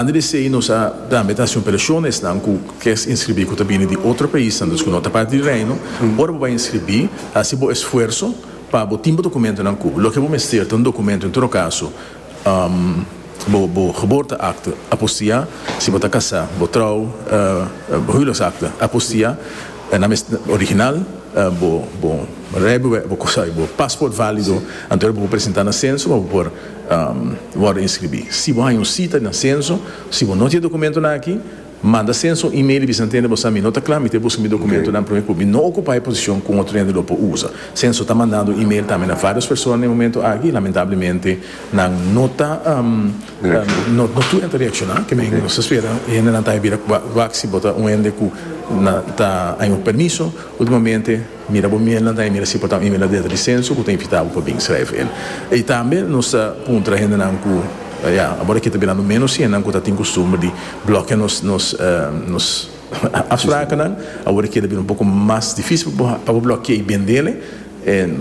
Antes di esei nos a tambe ta hasi un operacion na esnan cu kier inscribi cu ta bini di otro paisnan, dus cu no ta parti di Reino. Ora bo bai inscribi, hasi bo esfuerso pa bo tin bo documentonan cu bo. Loke bo mester ta un documento, en todo caso, bo geboorteakte, apostia, si bo ta casá, bo trouw, bo huwelijksakte, apostia, nan mester original, bo rijbewijs, bo paspoort valido, anto ora bo por presentá na censo pa bo por. wòrdu inskribí. Si bo haña un sita na senso, si bo no tin e dokumentonan akí, manda senso un email i bisa nan tende bo sa mi no ta kla, mi ta buska mi dokumentonan promé ku mi no okupá e posishon ku un otro hende lo por usa. Senso ta mandando un email tambe na vários persona na e momento akí i lamentablemente nan no ta no tur nan ta reakshoná. Ke men nos ta spera e hendenan ta haña bira wak si bo ta un hende ku ta haña un permiso últimamente. Mira bo miel nan ta imira si por ta imira den risenso ku ta invitá bo pa bin srèf el. I tambe nos ta puntra hendenan ku ya abor aki ta birando ménos hende ku ta tin kustumber di blòkia nos nos nos afsprakenan. Awor e keda bira un poko mas difísil pa bo blòki'é i bendele.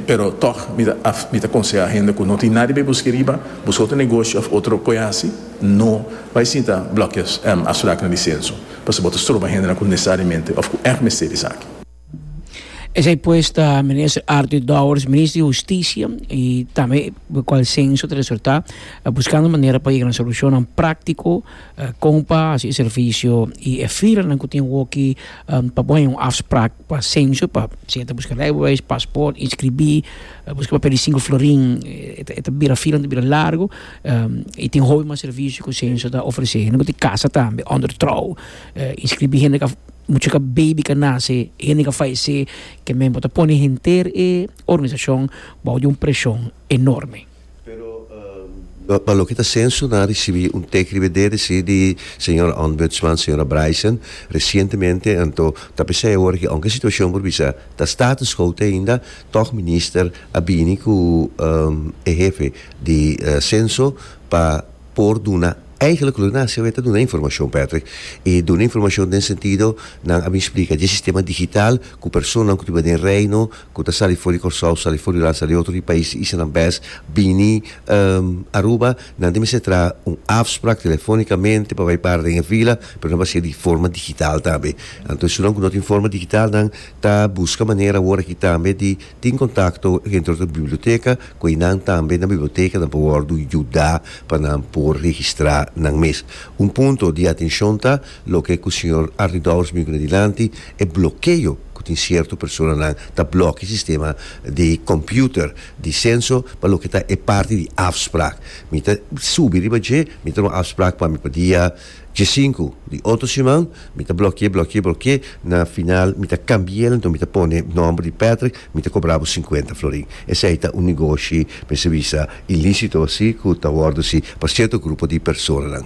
Pero tòg mi ta af mi ta konsehá hende ku no tin nadie bai busk'é riba, buska otro negoshi òf otro koe hasi, no bai sinta blòkia afsprakenan di senso, pasobra bo ta stroba hendenan ku nesesariamente òf ku ègt mester esaki. Esei pues ta Minister Arthur Dowers, Minister di Husticia y tambe cu cual censo ta resulta, buscando manera pa yega na solucionnan practico con pa haci e servicio y e filanan cu tin hoki pa por haña un afspraak pa censo pa siña ta busca rijbewijs, paspoort, inscribi, busca papel di cinco florin e ta bira filanan ta bira largo y tin hopi mas servicio cu censo ta ofrece hende cu tin casa tambe under trouw inscribi hende cu a. mucha ka baby ka nase hende ka fallecé ke member ta pone henter e organisacion bao di un presion enorme. Pero pa loke ta sensu nan a ricibi un tec riba de reci di señora Ombudsman, señora Bryson, recientemente anto ta pesai awor ke aunke situacion por bisa ta status quo te ainda tog minister a bini cu e hefe di senso pa por duna eigenlijk lo nan sebe ta duna informashon Patrick i duna informashon den sentido nan a bin splika dje sistema digital ku personanan ku ta riba den reino ku ta sali for di Kòrsou sali for di Holanda sali otro di pais di Isla nan bes bini Aruba nan ta mester traha un afsprak telefonikamente pa bai para den e fila pero nan base'e di forma digital tambe anto esun nan ku no tin forma digital nan ta buska manera awor aki tambe di Tin kontakto dentro di biblioteka ku einan tambe na bibliotecanan por wòrdu yuda pa nan por registrá nan mes. Un punto di atenshon ta loke ku señor Arnidols bin kune dilanti, e blokeo ku tin sierto personanan ta blòk e sistema di kòmputer di Censo pa loke ta e parti di afsprak. Mi ta subi riba dje, mi ta duna afsprak pa mi pa dia Dje sinku di otro siman mi ta blokié, blokié, blokié, na final mi ta kambié el enton mi ta pone nòmber di Patrick, mi ta kobra bo sinkuenta florin. Esei ta un negoshi mester bisa ilísito así ku ta wòrdu así pa sierto grupo di personanan.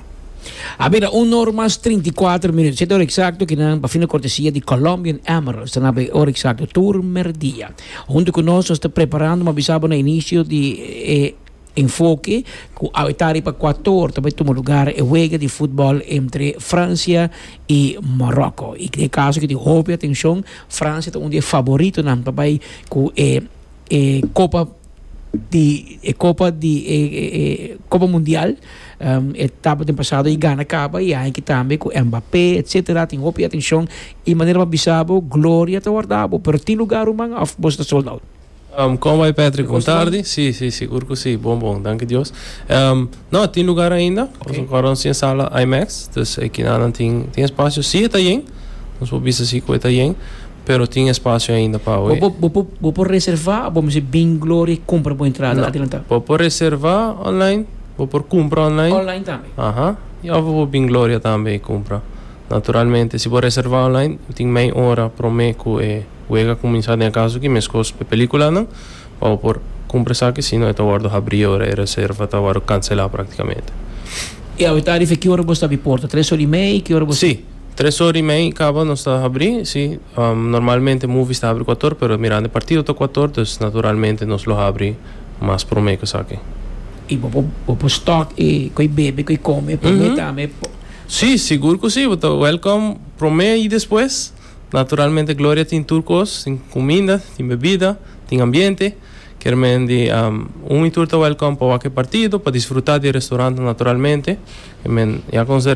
A bira un or mas trinta i kuater minut. Siete ora eksakto ki nan pafina kortesia di Colombian Emerald ta na bay ora eksakto tur merdia. Huntu ku nos nos ta preparando, mi a bisa bo na inisio di e. Enfoke cu awe ta riba Ecuator ta bay tuma lugar e wega di futbol entre Francia y Morocco. Y e caso cu tin hopi atencion, Francia ta un di e favoritonan pa bay cu e e copa di e copa di e e copa mundial. E tabata den pasado y gana caba y aiki tambe cu Mbappe etcetera tin hopi atencion. Y manera pa bisa bo, gloria ta wardabo pero tin lugar ruman of boso ta sold out? Kon bai Patrick bon tardi si si sigur ku si bon bon danki Dios no a tin lugar ainda nos a kòrdá nos tin e sala IMAX dus e kina nan tin tin espasio si e ta yen nos por bisa si ku e ta yen pero tin espasio ainda pa awe Bo bo por bo por reservá o bo mester bin Gloria i kumpra bo entrada adelantá? bo por reservá online bo por kumpra online Online tambe? aha i òf bo por bin Gloria tambe i kumpra naturalmente si bo reservá online tin mei ora promé ku e Wega kuminsá den e kaso ki meskos pa e pelíkulanan pa bo por kumpra esaki sino e ta wòrdu habrí ora e reserva ta wòrdu kanselá praktikamente. I awe ta riba ki ora bo sta di porta? Tres ora i mei? Ki ora bo sta? Sí, tres ora i mei kaba nos ta habrí, sí. Normalmente movies ta habri kuato ora pero mirando e partido ta kuato ora dus naturalmente nos lo habri mas promé ku esaki. I bo por bo por stock e ku e bebe ku e kome promé tambe? Sí, sigur ku sí, bo ta welcome promé i despues. Naturalmente Gloria tin tur kos, tin kuminda, tin bebida, tin ambiente. Kermen di un y tur ta wèlkòm pa wak e partido, pa disfrutá di e restorantnan naturalmente. Kermen ya konse.